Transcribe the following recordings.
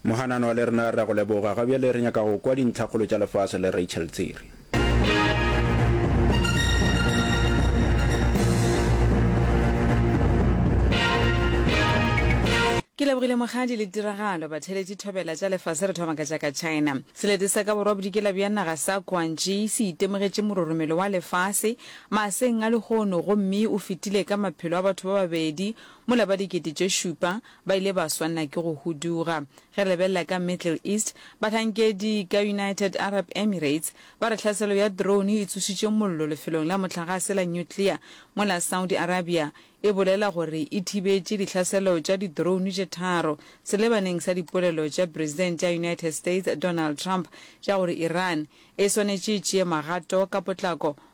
Mohanano wa le rena re a go leboga. Ga bjale re nyaka go kwa dintlhakgolo tša lefase le Rachel Tsiri. Ke lebogile mogadi le tiragalo. Batheletši thobela tša lefase re thoma ka tša ka China. Selete sa ka borwa bodikela bja naga sa Guangxi se itemogetše mororomelo wa lefase maaseng a lehono gomme o fetile ka maphelo a batho ba babedi Mola ba dikete tše šupa ba ile ba swanela ke go huduga. Ge re lebelela ka Middle East, bahlankedi ka United Arab Emirates ba re hlaselo ya drone e tsošitše mollo lefelong la mohlagase la nuclear mola Saudi Arabia e bolela gore e thibetše dihlaselo tša di-drone tše tharo selebaneng sa dipolelo tša President ya United States Donald Trump tša gore Iran e swanetše e tšee magato ka potlako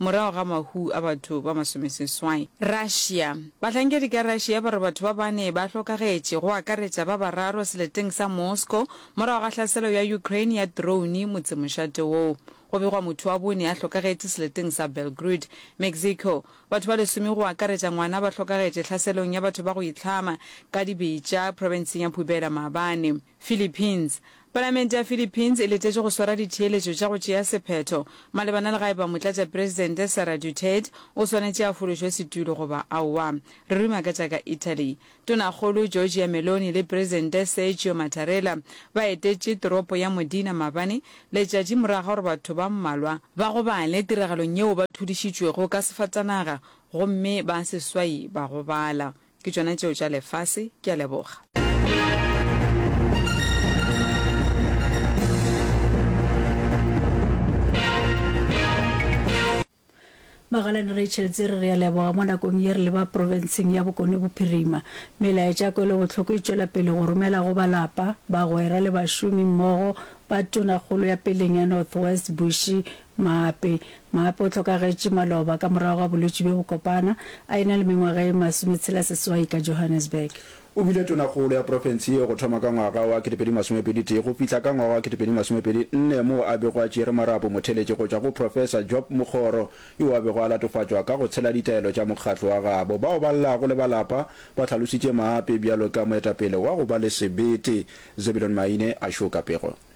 Morago ga mahu a batho ba masomeseswai. Russia. Bahlankedi ka Russia ba re batho ba bane ba hlokagetše, go akaretša ba bararo seleteng sa Moscow morago ga hlaselo ya Ukraine ya drone motsemošate woo. Go begwa motho wa bone a hlokagetše seleteng sa Belgrud. Mexico. Batho ba lesome go akaretša ngwana ba hlokagetše hlaselong ya batho ba go itlhama ka dibetša profenseng ya Pubela maabane. Philippines. Palamente ya Philippines e letetše go swara ditheeletšo tša go tšea sephetho malebana le ga e ba Motlatšapresidente Sara Duterte o swanetše a fološwe setulo goba aowa. Re ruma ka tša ka Italy. Tonakgolo Giorgia Meloni le Presidente Sergio Mattarella ba etetše toropo ya Modena maabane letšatši morago ga gore batho ba mmalwa ba gobale tiragalong yeo ba thudišitšwego ka sefatanaga gomme ba seswai ba gobala. Ke tšona tšeo tša lefase. Ke a leboga. Magalane Rachel Tsere re a leboga mo nakong ye re leba profenseng ya Bokone Bophirima. Melaetša kwelobohloko e tšwela pele go romela go balapa, bagwera le bašomi mmogo ba Tonakgolo ya peleng ya North West Bushy Maape. Maape o hlokagetše maloba ka morago ga bolwetši bjo bo kopana, a e-na le mengwaga ye masometshela-seswai ka Johannesburg. O bile tonakgolo ya profense ye go thoma ka ngwaga wa ketepedi masomepedi tee go fihla ka ngwaga wa ketepedi masomepedi nne moo a bego a tšere marapo motheletše go tšwa go Professor Job Mokgoro yo a bego a latofatšwa ka go tshela ditaelo tša mokgatlo wa gabo. Bao ba llago le ba lapa ba hlalositše Maape bjalo ka moetapele wa go ba le sebete. Zebulon Maine a šoka pego.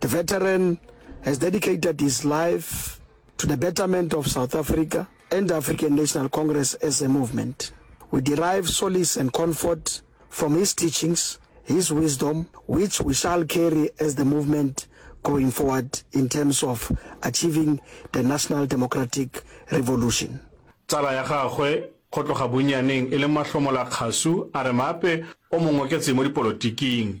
The veteran has dedicated his life to the betterment of South Africa and African National Congress as a movement. We derive solace and comfort from his teachings, his wisdom, which we shall carry as the movement going forward in terms of achieving the national democratic revolution. Tsala ya gagwe, go tloga bonnyaneng e le mahlomola kgasu, a re Maape o mo ngoketse mo dipolotiking.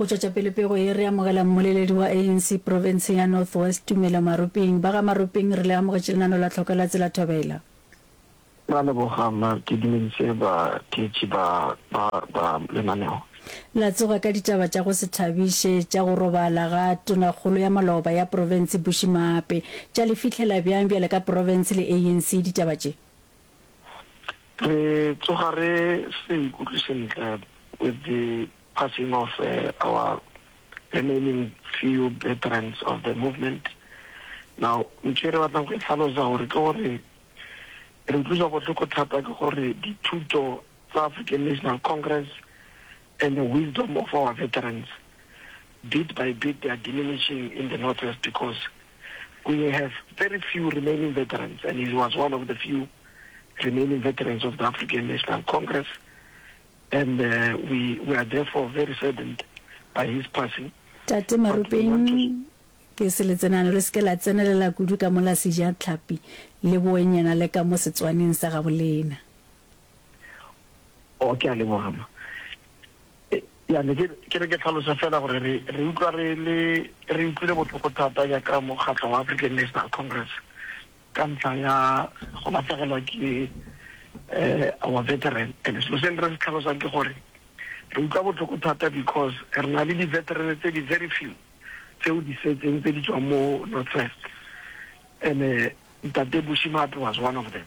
Go tšwetša pele pego ye, re amogela mmoleledi wa ANC profenseng ya North West, Tumelo Maropeng. Ba ga Maropeng, re le amogetše lenano la tlhoko la Tsela Thobela. Ra leboga mma, ke dumeditše batheetši ba ba ba lenaneo. La tsoga ka ditaba tša go se thabiše, tša go robala ga Tonakgolo ya maloba ya profense Bushy Maape. Tša le fihlela bjang bjale ka profense le ANC ditaba tše? Re tsoga re se ikutlwe sentle with the passing of our remaining few veterans of the movement. Now ntho e re batlang go e hlalosa gore ke gore re utlwiswa bohloko thata ke gore dithuto tsa African National Congress and the wisdom of our veterans, bit by bit they are diminishing in the North West because we have very few remaining veterans and he was one of the few remaining veterans of the African National Congress and uh, we, we are therefore very saddened by his passing. Tate Marupeng, ke se letsenano le seke la tsenelela kudu ka mola seja tlhapi le boenyana le ka mo setswaneng sa gabolena. Oh, ke a leboga, ma. E, ya, ne ke, ke re ke tlhalosa fela gore re, re utlwa re le, re utlwile bohloko thata ya ka mokgatlo wa African National Congress ka ntlha ya go lahlegelwa ke eh, our veteran. And selo se re se tlhalosang ke gore re utlwa bohloko thata because re na le di-veteran tse di very few tseo di setseng tse di tswang mo Northwest. And eh, Ntate Bushimatu was one of them.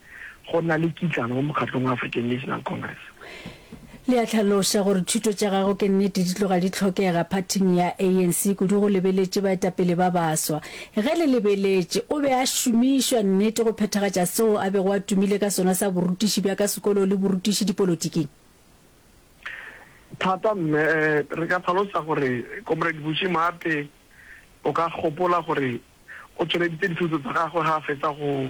go na le kitlano mo mokgatlong wa African National Congress. Le a hlaloša gore thuto tša gagwe ke nnete di tloga di hlokega phathing ya ANC, kudu go lebeletše baetapele ba baswa. Ge le lebeletše, o be a šomišwa nnete go phethagatša seo a bego a tumile ka sona sa borutiši bja ka sekolong le borutiši dipolotiking? Thata mme. Re ka hlalosa gore Comrade Bushy Maate o ka gopola gore o tšweleditše dithuto tsa gagwe ge a fetsa go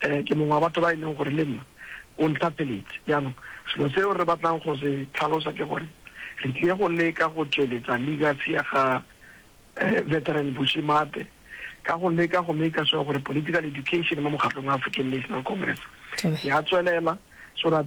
Ke mongwe wa batho ba e leng gore le nna o ntlhapeletše. Bjanong, selo seo re batlang go se tlhalosa ke gore re tlie go leka go tšweletsa legacy ya ga Veteran Bushy Mathe ka go leka go maker sure gore political education mo mokgatlong wa African National Congress ya tswelela so that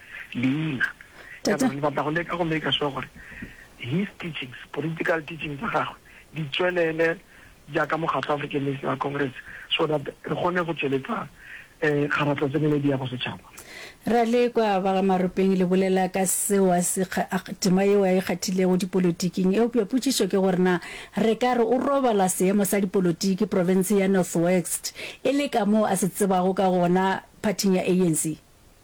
leina ya gore le batla go leka go make sure gore his teachings, political teachings tsa gagwe di tswelele jaaka mokgatlho African National Congress so that re kgone go tsweletsa um kgaratlho tseneledi ya bosetšhaba. Ra le kwa ba ga Maropeng le bolela ka seo a se tema yeo a e kgathilego dipolotiking. Eupša potšišo ke gore na re ka re o robala seemo sa dipolotiki profenseng ya North West e le kamoo a se tsebago ka gona phathing ya ANC?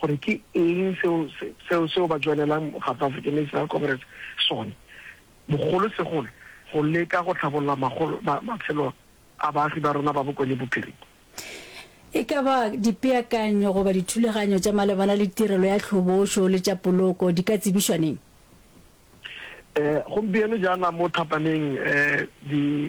gore ke eng seo seo seo ba joinelang South African National Congress sone, bogolo segolo go leka go tlhabolola magolo ma, matshelo a baagi ba rona ba Bokone Bophirima. E ka ba dipeakanyo goba dithulaganyo tša malebana le tirelo ya tlhobošo le tša poloko di ka tsebišwa neng? Eh, gompieno jaana mo Thapaneng eh, di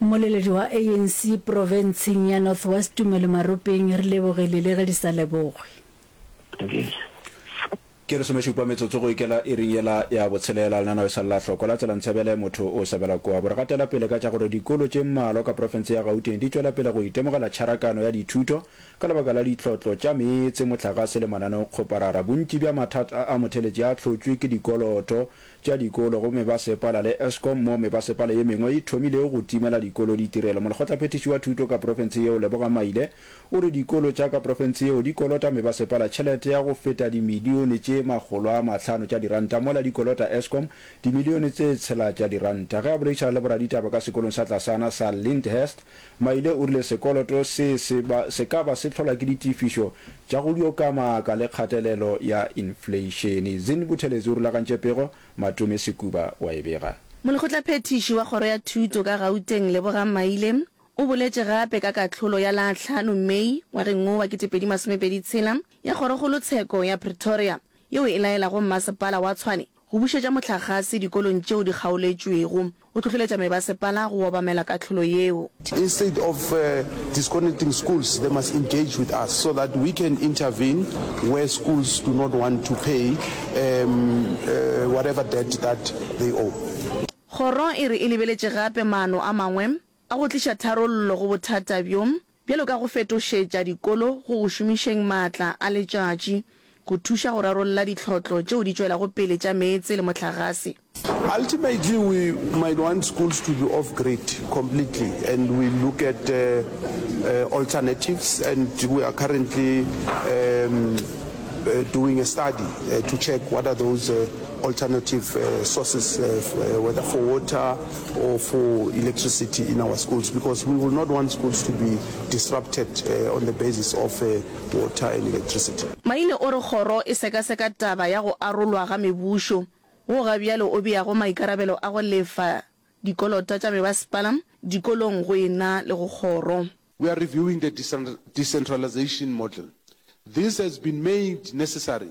Mmoleledi wa ANC profenseng ya North West Tumelo Maropeng re lebogile le ge di sa lebogwe. Ke lesomešupa metsotso go ikela iring yela ya botshelela. Lenaneo e sa lla hloko la Tsela Ntsebele, Motho o Sabela Kua bo re gatela pele ka tša gore dikolo tše mmalwa ka profense ya Gauteng di tšwela pele go itemogela tšharakano ya dithuto ka lebaka la ditlotlo tša meetse, mohlagase le mananeo-kgoparara. Bontši bja mathata a motheletši a hlotšwe ke dikoloto tša dikolo gomme ba sepala le Eskom moo mebasepala ye mengwe e thomilego go timela dikolo ditirelo. Molekgotlaphethiši wa Thuto ka profense yeo Leboga Maile o re dikolo tša ka profense yeo di kolota mebasepala tšhelete ya go feta dimilione tše makgolo a mahlano tša diranta mola di kolota Eskom dimilione tse tshela tša diranta. Ge a boledišana le boraditaba ka sekolong sa tlasana sa Lyndhurst Maile o rile sekoloto se se ba se ka ba se tlholwa ke ditefišo tša go dio ka maaka le kgatelelo ya infleišene. Zin Buthelezi o rulagantše pego, Matome Sekuba wa e bega. Molekgotlaphethiši wa Kgoro ya Thuto ka Gauteng Lebogang Maile o boletše gape ka kahlolo ya la hlano Mei ngwageng wo wa kete pedi masome pedi tshela ya Kgorokgolo Tsheko ya Pretoria yeo e laelago Mmasepala wa Tshwane Go bušetša mohlagase dikolong tšeo di kgaoletšwego, o hlohleletša mebasepala go obamela kahlolo yeo. Instead of disconnecting schools, they must engage with us so that we can intervene where schools do not want to pay whatever debt that they owe. Kgoro e re e lebeletše gape maano a mangwe a go tliša tharollo go bothata bjo. bjalo ka go fetošetša dikolo go go šomišeng maatla a letšatši go thuša go rarolla ditlhotlo tšeo di tšwelago pele tša meetse le mohlagase. Ultimately we might want schools to be off grid completely and we look at alternatives and we are currently doing a study to check what are those alternative sources whether for water, or for electricity in our schools because we will not want schools to be disrupted on the basis of water and electricity. Maine o re kgoro e sekaseka taba ya go arolwa ga mebušo wo ga bjale o beago maikarabelo a go lefa dikolota tša mebasepala, dikolong go e na le go kgoro. We are reviewing the decentralization model. This has been made necessary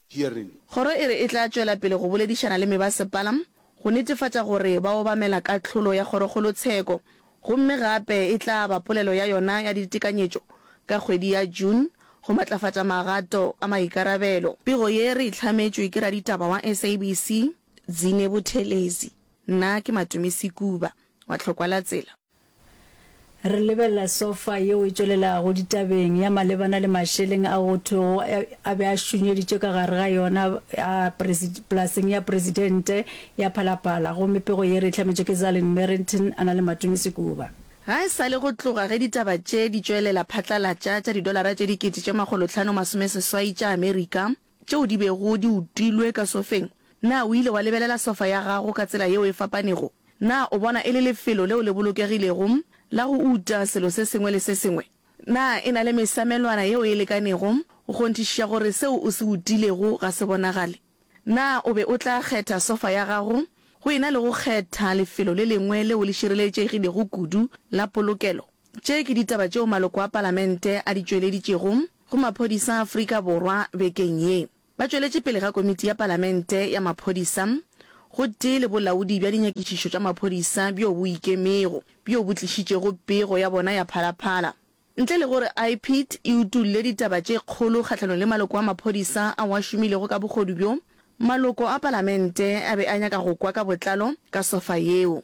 hearing. Kgoro e re e tla tšwela pele go boledišana le mebasepala go netefatša gore ba obamela kahlolo ya kgorokgolo tsheko gomme gape e tla ba polelo ya yona ya ditekanyetšo ka kgwedi ya June go matlafatša magato a maikarabelo. Pego ye re e hlametšwe ke raditaba wa SABC Dzine Buthelezi. Nna ke Matumisi Kuba wa Tlhokwalatsela. Re lebelela sofa yeo e tšwelelago ditabeng ya malebana le mašeleng a go thwego a be a šunyeditšwe ka gare ga yona polaseng ya Presidente ya Phalaphala gomme pego ye re e hlametšwe ke Zalin Merrington a na le Matumi Sekuba. Ga e sa le go tloga ge ditaba tše di tšwelela phatlalatša tša didolara tše dikete tše makgolotlhano masomeseswai tša Amerika, tšeo di bego di utilwe ka sofeng? Na o ile wa lebelela sofa ya gago ka tsela yeo e fapanego? Na o bona e le lefelo leo le bolokegilego la go uta selo se sengwe le se sengwe? Na e na le mesamelwana yeo e lekanego go kgonthišiša gore seo o se utilego ga se bonagale? Na o be o tla kgetha sofa ya gago go ena le go kgetha lefelo le lengwe leo le šireletšegilego kudu la polokelo? Tše ke ditaba tšeo maloko a Palamente a di tšweleditšego. go maphodisa a Afrika Borwa bekeng ye. Ba tšweletše pele ga Komiti ya Palamente ya Maphodisa gotee le Bolaodi bja Dinyakišišo tša Maphodisa bjo bo Ikemego bjo bo tlišitšego pego ya bona ya phalaphala. Ntle le gore IPID e utolle ditaba tše kgolo kgahlanong le maloko a maphodisa ao a šomilego ka bogodu bjo, maloko a Palamente a be a nyaka go kwa ka botlalo ka sofa yeo.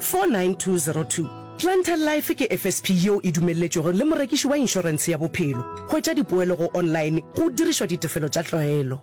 49202. Planter Life ke FSP yeo e dumelletšwego le morekiši wa inšorense ya bophelo. Hwetša dipoelo go online go dirišwa ditefelo tša tlwaelo.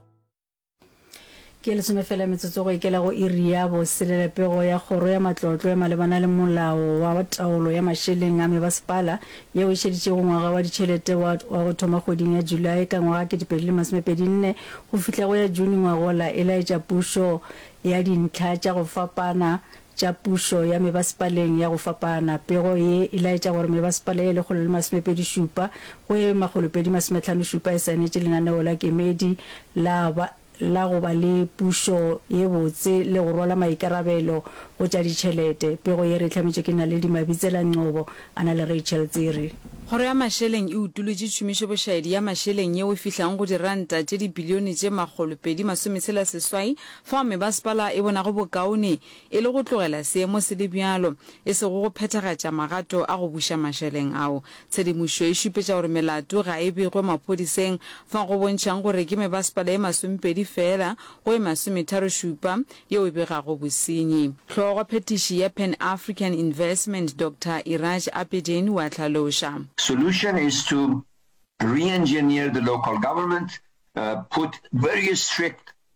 Ke lesome fela metsotso go ikela go iri ya boselela. Pego ya kgoro ya matlotlo ya malebana le molao wa taolo ya mašeleng a mebasepala yeo e šeditšego ngwaga wa ditšhelete wa wa go thoma kgweding ya Julae ka ngwaga kete pedi le masome pedi nne go fihla go ya June ngwagola e laetša pušo ya dintlha tša go fapana tša pušo ya mebasepaleng ya go fapana. Pego ye e laetša gore mebasepala ye lekgolo le masomepedi šupa go ye makgolopedi masometlhano šupa e saenetše lenaneo la kemedi la ba la go ba le pušo ye botse le go rwala maikarabelo go tša ditšhelete. Pego ye re e hlametšwe ke Naledi Mabitsela Ngcobo a na le Rachel Tsiri. Kgoro ya Mašeleng e utolotše tšhomišobošaedi ya mašeleng yeo e fihlago go diranta tše dibilione tše makgolopedi masometshela seswai Fao mebasepala e bonago bokaone e le go tlogela seemo se le bjalo, e sego go phethagatša magato a go buša mašeleng ao. Tshedimošo e šupetša gore melato ga e begwe maphodiseng, fao go bontšhago gore ke mebasepala e masomepedi feela go e masometharo-šupa yeo e begago bosenyi. Hlogophethiši ya Pan African Investment Doctor Iraj Abedin o a hlaloša. Solution is to re-engineer the local government, put very strict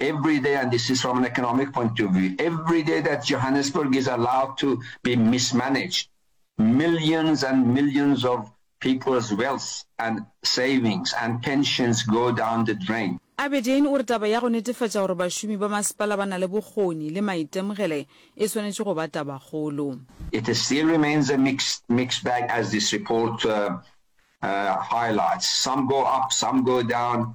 Every day, and this is from an economic point of view, every day that Johannesburg is allowed to be mismanaged, millions and millions of people's wealth and savings and pensions go down the drain. Aberdeen o re taba ya go netefatša gore bašomi ba masepala ba na le bokgoni le maitemogele e swanetše go ba tabakgolo. It still remains a mixed, mixed bag as this report uh, uh, highlights. Some go up, some go down.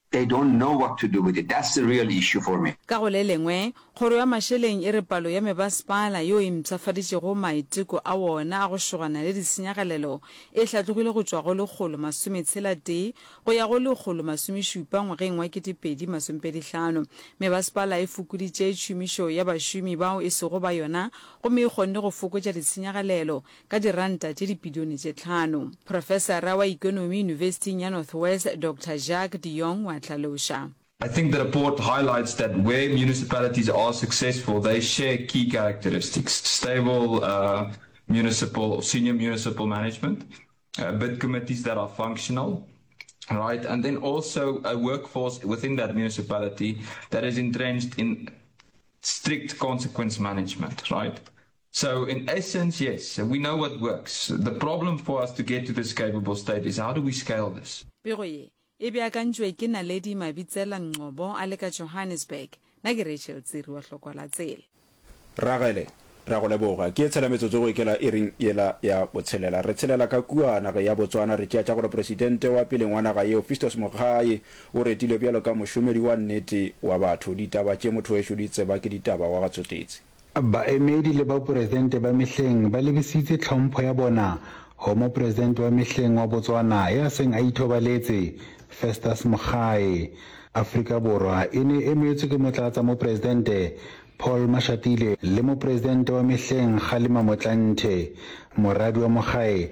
They don't know what to do with it, that's the real issue for me. Ka go le lengwe, Kgoro ya Mašeleng e re palo ya mebasepala yo e mpshafaditšego maiteko a wona a go šogana le ditshenyagalelo e hlatlogile go tšwa go lekgolo masome tshela tee go ya go lekgolo masome šupa ngwageng wa kete pedi masompedi hlano. Mebasepala e fokoditše tšhomišo ya bašomi bao e sego ba yona gomme e kgonne go fokotša ditshenyagalelo ka diranta tše dibilione tše tlhano. Profesara wa ikonomi Yunibesithing ya North West, Doctor Jacques de Jong wa hlaloša. I think the report highlights that where municipalities are successful, they share key characteristics, stable municipal or senior municipal management, bid committees that are functional, right, and then also a workforce within that municipality that is entrenched in strict consequence management, right. So in essence, yes, we know what works. The problem for us to get to this capable state is how do we scale this? Pego ye e beakantšwe ke Naledi Mabitsela Ngcobo a le ka Johannesburg. Na ke Rachel Tsiri wa Hlokwa la Tsela. Ragele, re a go leboga. Ke tshela metsotso go ikela iring yela ya botshelela. Re tshelela ka kua nageng ya Botswana, re tšea tša gore Presidente wa peleng wa naga yeo, Fistos Mogae, o retilwe bjalo ka mošomedi wa nnete wa batho. Ditaba tše, motho wešo, di tseba ke ditaba wa ga Tsotetsi. Baemedi le Boporesente ba mehleng ba lebisitse tlhompho ya bona go Moporesente wa mehleng wa Botswana ya seng a ithobaletse, Festus Mogae. Afrika Borwa e ne e emetswe ke Motlatsamoporesente Paul Mashatile le Moporesente wa mehleng Kgalema Motlanthe. Moradi wa Mogae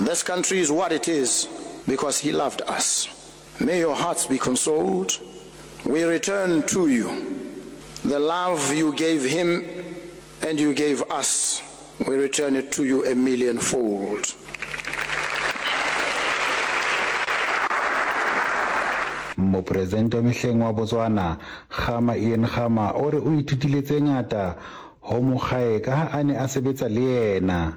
This country is what it is because he loved us. May your hearts be consoled. We return to you the love you gave him and you gave us. We return it to you a million fold. Mopresente mehleng wa Botswana, Kgama Ian Kgama o re o ithutile tse ngata ho mokgae ka ha a ne a sebetsa le yena.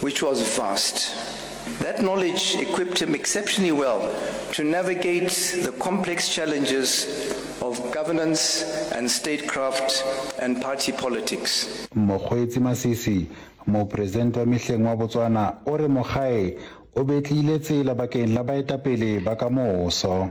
which was vast. That knowledge equipped him exceptionally well to navigate the complex challenges of governance and statecraft and party politics. Mokgweetsi Masisi, Mopresidente wa mehleng wa Botswana o re Mogae o betlile tsela bakeng la baetapele ba ka moso.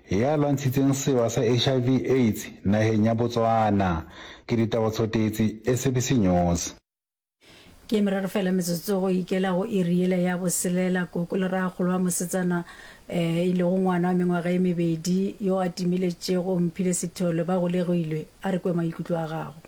ya lwantshitseng sewa sa HIV, AIDS naheng ya Botswana. Ke Ditaba Tsotetsi, SABC News. Ke meraro fela metsotso go ikela go iri yela ya boselela. Koko le rraagolo wa mosetsana eh, e lego ngwana wa mengwaga e mebedi yo a timiletšego mphile sethole ba golegilwe. A re kwe maikutlo a gago.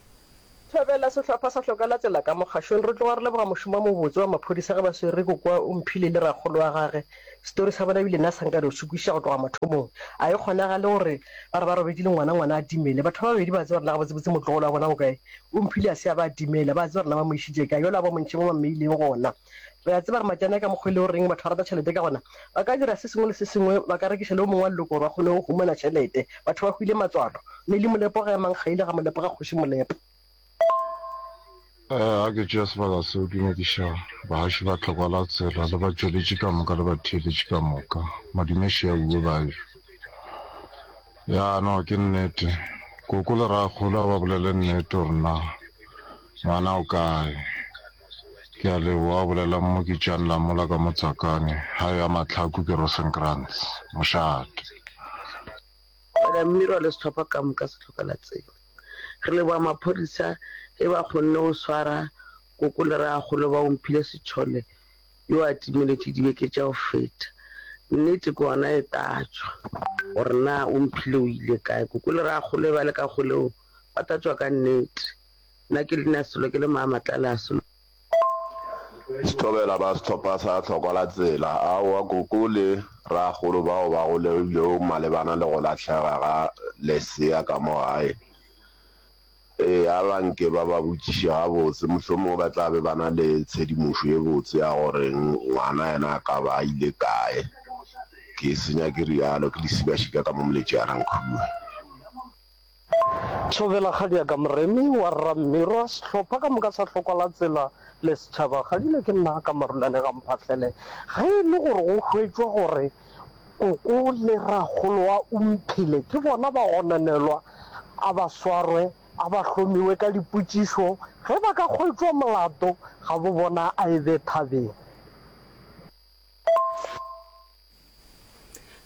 Thobela, Sehlopha sa Hloka la Tsela ka mo Kgašweng, Re tloga re leboga mošomo o mobotse wa maphodisa ge ba swere Riko kwa o mphile le rakgolo wa gage. Setori sa bona ebile nna sa nka diosu kwišiša go tloga mathomong. A e kgonagale gore ba re ba robetše le ngwana, ngwana a timele. Batho ba babedi ba tseba rena gabotsebotse motlogolo wa bona o kae. O mphile a se a ba a timela. Ba tseba rena ba mo išitše kae. Yola a bomontšhe mo ba mmeileng gona. Re a tseba gore matšana ka mokgwa e lego reng batho ba rata tšhelete ka gona, ba ka dira se sengwe le se sengwe, ba ka rekiša le yo mongwe wa leloko gore ba kgone go humana tšhelete. Batho ba hwile matswalo. Neli Molepo ga emang kgaile ga Molepo ga Kgoši Molepo. Ee, a ke tšea sebaka seo ke nyakiša bahaši ba tlhokwa la tsela le batšweletši ka moka le batheeletši ka moka. Modimo še a bue bajo. Ya no, ke nnete. Koko le rakgolo a ba bolele nnete gore na ngwana o kae. Ke a leboga, o bolela Mmoki Jan Lamola ka Motsakane, gae ya Mahlaku ke Rosenkrantz, mošate. Brother Mmirwa le sehlopha ka moka se hloka la tseba. Re leboga maphodisa ge ba kgonne go swara koko le ragagolo ba Omphile Sithole yo a timeletše dibeke tša go feta. Nnete ke gona e tatšwa gore na Omphile o ile kae. Koko le ragagolo ge ba le ka kgoleng ba tatšwa ka nnete. Nna ke leina Sello, ke le Maamatlale a Sello. Sethobela ba Sehlopha sa Hlokwa la Tsela. Aowa, Koko le Rraagolo bao ba go lebilwego malebana le go lahlega ga lesea ka mo gae, ee, a ba nke ba ba botšiše gabotse. Mohlomongwe ba tla be ba na le tshedimošo e botse ya gore ngwana yena a ka ba a ile kae. Ke se nyake realo, ke lesibashika ka mo moletše a reng khuu. Thobela Kgadiaka Moremi wa Rra Mmirwa, sehlopha ka moka sa Hlokwa la Tsela le setšhaba, Kgadile ke nna ka Marulane Gamphahlele. Ge e le gore go hwetšwa gore Koko le Rakgolo wa Umphile ke bona ba gononelwa, a ba swarwe, a ba hlomiwe ka dipotšišo, ge ba ka hwetšwa molato ga bo bona a e be thabeng.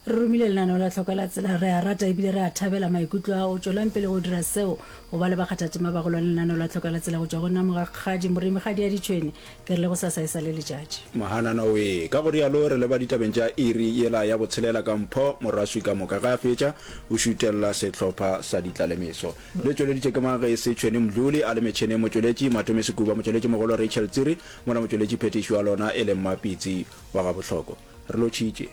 Re romile lenaneo la tlhoko la tsela. Re a rata ebile re a thabela maikutlo ao. Tšwelang pele go dira seo, go ba le bakgathatema ba golwane lenaneo la tlhoko la tsela go tšwa go nna Mogakgadi Moremigadi ya Ditšhwene. Ke re le go sasa e sa le letšatši. Mohanana we. Ka go rialo re leba ditabeng tša iri yela ya botshelela ka mpho. Moraswi ka moka ge a fetša o šutelela sehlopha sa ditlalemeso. Le tšweleditšwe ke mang ge e se Tšhwene Mdluli, a le metšheneng motšweletši Matome Sekuba, motšweletšimogolo Rachel Tsiri, Mona motšweletši phethiši wa lona e leng Mapitsi wa Gabohloko. Re lotšhitše.